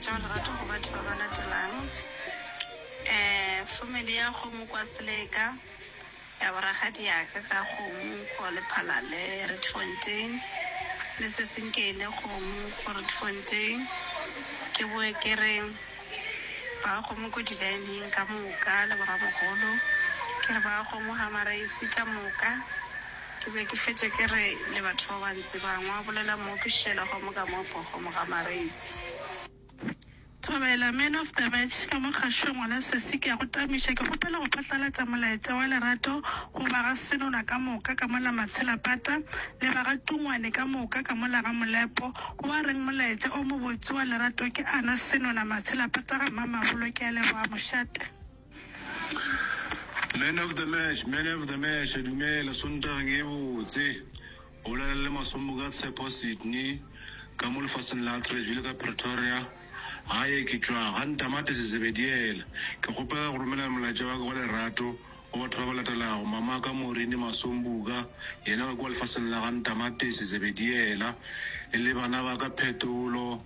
Tšeo lerato go batho ba ba latelang, um Family ya kgomo kwa Seleka, ya bo rakgadi ya ka ka kgomo ko Lephalale, Rietfontein, le seseng Keile kgomo ko Rietfontein. Ke boe ke re ba kgomo ko Dilaeneng ka moka le bo ramogolo, ke re ba kgomo Hammareis ka moka. Ke be ke fetša ke re le batho ba bantsi ba ngwa, bolela Mooki Sheila gomme ka moo gogomo ga Mareisi. Thobela, Man of the Match, ka mo kgašo ngwana sesi ke a go tamiša, ke kgopela go phatlalatša molaetša wa lerato go ba ga Senola ka moka ka mo la Matshilapata le ba ga Tungwane ka moka ka mo la ga Molepo. O a reng molaetša o mobotse wa lerato ke ana, Senola, Matshilapata ga Mamabolo. Ke a leboga mošate. Man of the match, man of the match, dumela Sontageng e botse. O bolela le Masombo ka Tshepo Sydney ka mo lefaseng la Atteridge bile ka Pretoria. Gae ke tšwa ga Ntamati Sezebediela. Ke kgopela go romela molaetša wa ka wa lerato go batho ba ba latelago, mamaka Maureen Masombuka, yena wa kua lefaseng la ga Ntamati Sezebediela, e le bana ba ka Phetolo,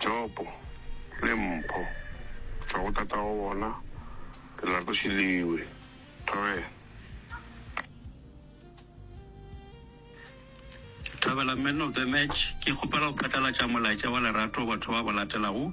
Jopo le Mpho tšwa go tatago bona Lerato Šiliwe. Thobela. Thobela, Man of the Match, Ke kgopela go phatlalatša molaetša wa lerato go batho ba go latelago.